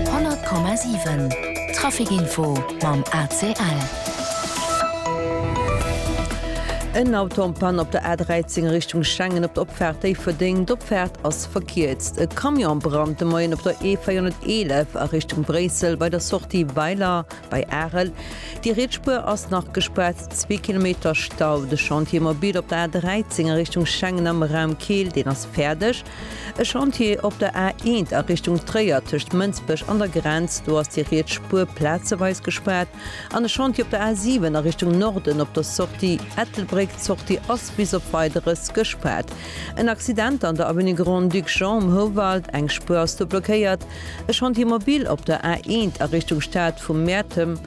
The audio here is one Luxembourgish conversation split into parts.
100,7 Trafic Info mam ACL. En Auto am Panne op der A 13 a Richtung Schengen op der Opfaart Déifferdeng. D'Opfaart ass verkierzt. E Camion am Brand de Moien op der E 411 a Richtung Bréissel bei der Sortie Weiler bei Arel. Déi riets Spuer ass nach gespaart, zwee Kilometer Stau. De Chantier mobile op der A 13 a Richtung Schengen am Raum Keel, deen ass fäerdeg. E Chantier op der A1 a Richtung Tréier tëscht Mënsbech an der Grenz, do ass déi riets Spuer plazeweis gespaart, an e Chantier op der A7 a Richtung Norden op der Sortie Ettelbréck. D'Sortie ass bis op Weideres gespaart. En Accident an der Avenue Grand-Duc Jean um Houwald, eng Spuer ass do blockéiert. E Chantier mobile op der A1 a Richtung Stad vu Mäertem.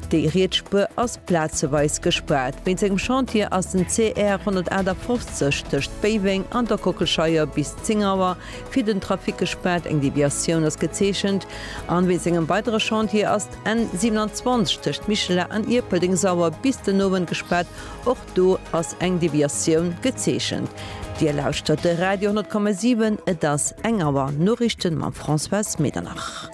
Déi riets Spuer ass plazeweis gespaart. Wéinst engem Chantier ass den CR 158 tëscht Béiweng an der Kockelscheier bis 10 Auer fir den Trafic gespaart, eng Deviatioun ass gezeechent. An wéinst engem weidere Chantier ass d'N 27 tëscht Michela an Ierpeldeng sauer bis den Owend gespaart, och do ass eng Deviatioun gezeechent. Dir lauschtert de Radio 10,7, et ass eng Auer Noriichten mam Françoise Medernach.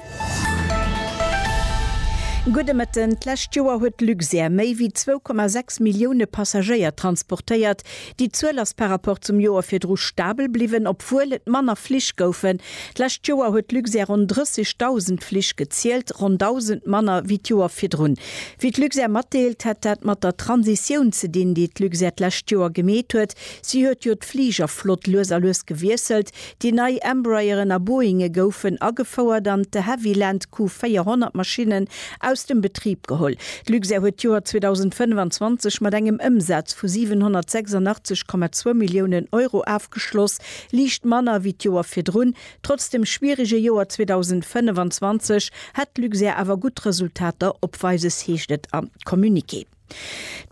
Gudde Mëtten, D'lescht Joer huet d'Luxair méi wéi 2,6 Millioune Passagéier transportéiert. Déi Zuel ass par rapport zum Joer virdru stabel bliwwen, obwuel et manner Flich goufen. D'lescht Joer huet d'Luxair ronn 30.000 Flich gezielt, ronn 1.000 manner wéi d'Joer virdrun. Wéi d'Luxair matdeelt, hätt dat mat der Transitioun ze dinn, déi d'Luxair d'lescht Joer gemeet huet. Si huet jo d'Fligerflott lues a lues gewiesselt, Déi nei Embrayeren a Boeinge goufen agefouert an d'De Havilland Q400 Maschinnen aus dem Betrib geholl. D'Luxair huet d'Joer 2025 mat engem Ëmsaz vu 786,2 Milliounen Euro afgeschloss, liicht manner wéi d'Joer virdrun. Trotz dem schwierege Joer 2025 hätt d'Luxair awer gutt Resultater opweises, heescht et am Communiqué.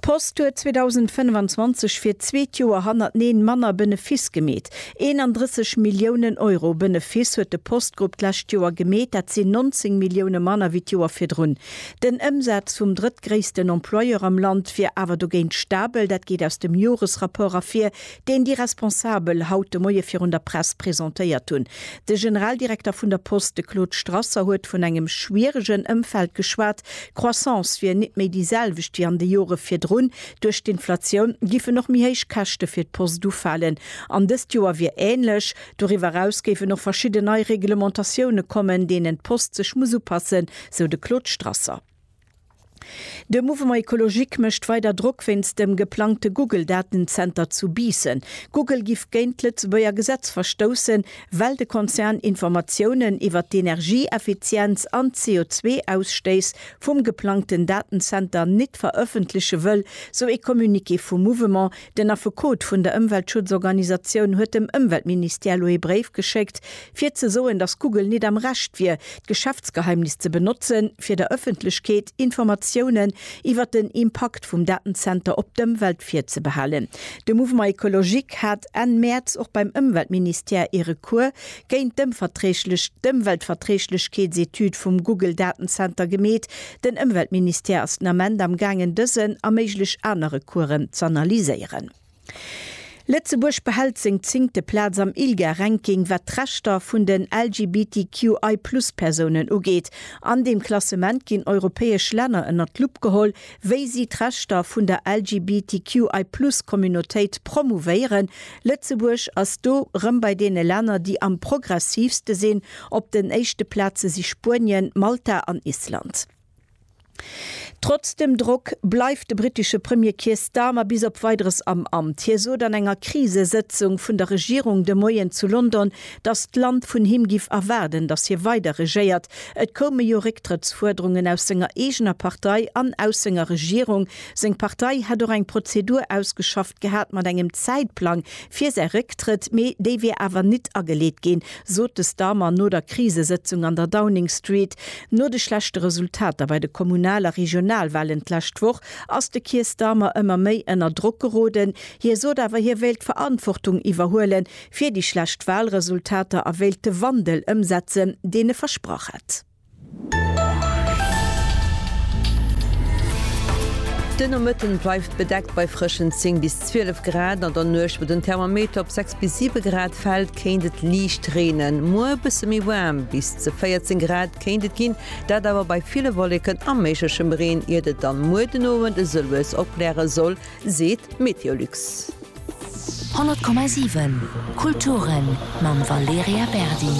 D'Post huet 2025 fir d'zweet Joer hannerteneen manner Benefiss gemeet. 31 Milliounen Euro Benefiss huet de Postgrupp d'lescht Joer gemeet, dat sinn 19 Millioune manner wéi d'Joer virdrun. Den Ëmsaz vum drëttgréissten Employeur am Land wier awer dogéint stabel, dat geet aus dem Joresrapport ervir, deen déi Responsabel haut de Moie virun der Press presentéiert hunn. De Generaldirekter vun der Post, de Claude Strasser, huet vun engem schwieregen Ëmfeld geschwat. D'Croissance wier nit méi déi selwecht wéi an de Jore virdrun. Duerch d'Inflatioun giffen och méi héich Käschte fir d'Post ufalen. An dëst Joer wier änlech. Doriwwer eraus géifen och verschidden nei Reglementatioune kommen, deenen d'Post sech muss upassen, sou de Claude Strasser. De Mouvement Ecologique mécht weider Drock wéinst dem geplangte Google-Datenzenter zu Biissen. Google giff géint d'Lëtzebuerger Gesetz verstoussen, well de Konzern Informatiounen iwwer d'Energieeffizienz an d'CO2-Ausstéiss vum geplangten Datenzenter nit verëffentleche wëll, sou ee Communiqué vum Mouvement, Den Affekot vun der Ëmweltschutzorganisatioun huet dem Ëmweltministère lo ee Bréif geschéckt, fir ze soen, datt Google net am Recht wier, d'Geschäftsgeheimnis ze benotzen, fir der Ëffentlechkeet Informatiounen iwwer den Impakt vum Datenzenter op d'Ëmwelt virzebehalen. De Mouvement Ecologique hat Enn Mäerz och beim Ëmweltministère ee Recours géint d'Ëmweltverträglechkeetsetüd vum Google-Datenzenter gemeet, Den Ëmweltministère ass den Ament am gaangen dësen a méiglech aner Recoursen z'analyséieren. Lëtzebuerg behält seng zéngte Plaz am ILGA-Ranking wat d'Rechter vun den LGBTQI-Plus-Persounen ugeet. An deem Klassement ginn europäesch Länner ënnert d'Lupp geholl, wéi si d'Rechter vun der LGBTQI-Plus-Communautéit promouvéieren, Lëtzebuerg ass do rëm bei deene Länner, déi am progressiivste sinn. Op den éischte Plaze si Spuenien, Malta an Island. Trotz dem Drock bleift de brittesche Premier Keir Starmer bis op Weideres am Amt. Hie sot an enger Krisesëtzung vun der Regierung de Moien zu London, datt d'Land vun him giff erwaarden, datt hie weider regéiert. Et koume jo Récktrëttsfuerderungen aus senger eegener Partei an aus senger Regierung, Seng Partei hätt och eng Prozedur ausgeschafft gehat mat engem Zäitplang fir säi Récktrëtt, mee déi wier awer nit ageleet ginn, sot de Starmer no der Krisesëtzung an der Downing Street. No de schlechte Resultater bei de Kommunal a Regionalwahlen d'lescht Woch ass de Keir Starmer ëmmer méi ënner Drock geroden. Hie sot awer, hie wéilt d'Verantwortung iwwerhuele fir déi schlecht Wahlresultater a wéilt de Wandel ëmsetzen, deen e versprach hätt. De Nomëtten bleift bedeckt bei frëschen 10 bis 12 Grad. An der Nuecht, wou den Thermometer op 6 bis 7 Grad fält, kéint et liicht reenen. Muer e bësse méi waarm, bis ze 14 Grad kéint et ginn, dat awer bei ville Wolleken a méiglechem Reen, iert et dann muer den Owend esou lues opkläre soll. seet Meteolux. 100,7 Kulturen mam Valerija Berdi.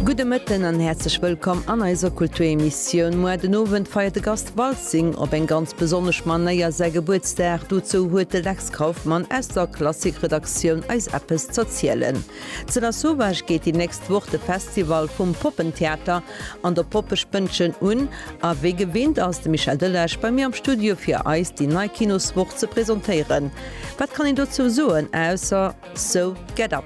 Gudde Mëtten an häerzlech wëllkomm an eiser Kulturemissioun. Moar den Owend feiert de Gast Waltzing op eng ganz besonnesch Manéier säi Gebuertsdag. Dozou huet de Lex Kauffmann aus der Klassik-Redaktioun eis eppes z'erzielen. Zu der Sauvage geet déi nächst Woch de Festival vum Poppentheater An der Poppespëndchen un, a wéi gewinnt ass de Michel Delage bei mir am Studio fir eis déi nei Kinoswoch ze presentéieren. Wat kann een dozou soen ausser So get up!